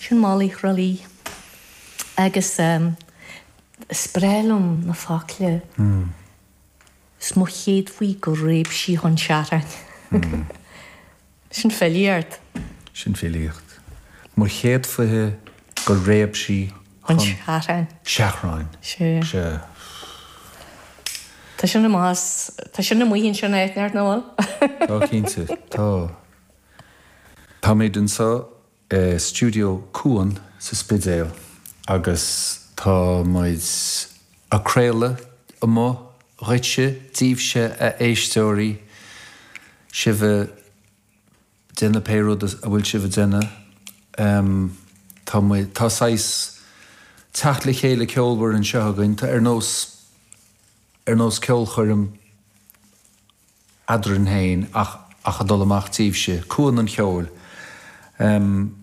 Sin molaí thrólaí. Agus is breá liom na focla. Is mo chéad faoi go réab sí chun seartháin. Sin filí ort. Sin filíocht. Mo chéad faoithe go réab sí chun seartháin. Sea. Tá sin amuigh ansin, áit neart, nó bhfuil? Tá, cinnte, tá. Táimíd anso i Studio Cuan sa Spidéal agus tá muid a' craoladh amach dhuitse, díbhse a éisteoirí, sibh a' déanamh pé rud atá sibh a' déanamh. Tá muid, tá saghas teacht le chéile ceolmhar anseo againn, tá ar nós, ar nós ceolchoirm. eadrainn féin ach ach a dul amach díbhse, Cuan an Cheoil, em.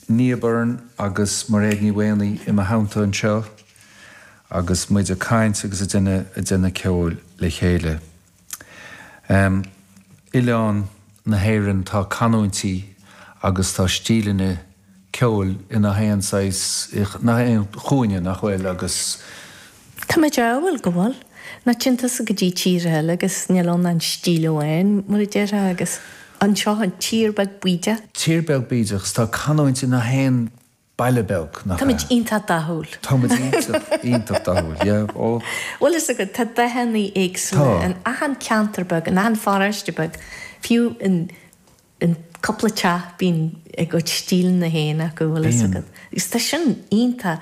Nia Byrne agus Mairéad Ní Mhaonaigh i mo theannta anseo agus muid a' caint agus a' déanamh, a' déanamh ceoil le chéile. Em. Oileán na hÉireann tá canúintí agus tá stíleanna ceoil i ngach aon saghas, i ngach aon chúinne nach bhfuil agus, Táimid ámharúil go bhfuil. Má théann tusa go dtí tír eile agus níl ann ach stíl amháin, mar a déarfá, agus anseo, an tír beag bídeach. Tír beag bídeach is tá canúint i ngach aon baile beag, nach ea? Táimid iontach dathúil. Táimid iontach, iontach dathúil, yeah, oh. Bhfuil fhios agat, tá dathannaí éagsúla in achan ceantar beag, in achan pharóiste beag, fiú in cúpla teach bíonn a gcuid stíleanna féin acu, bhfuil fhios agat. Agus tá sin iontach.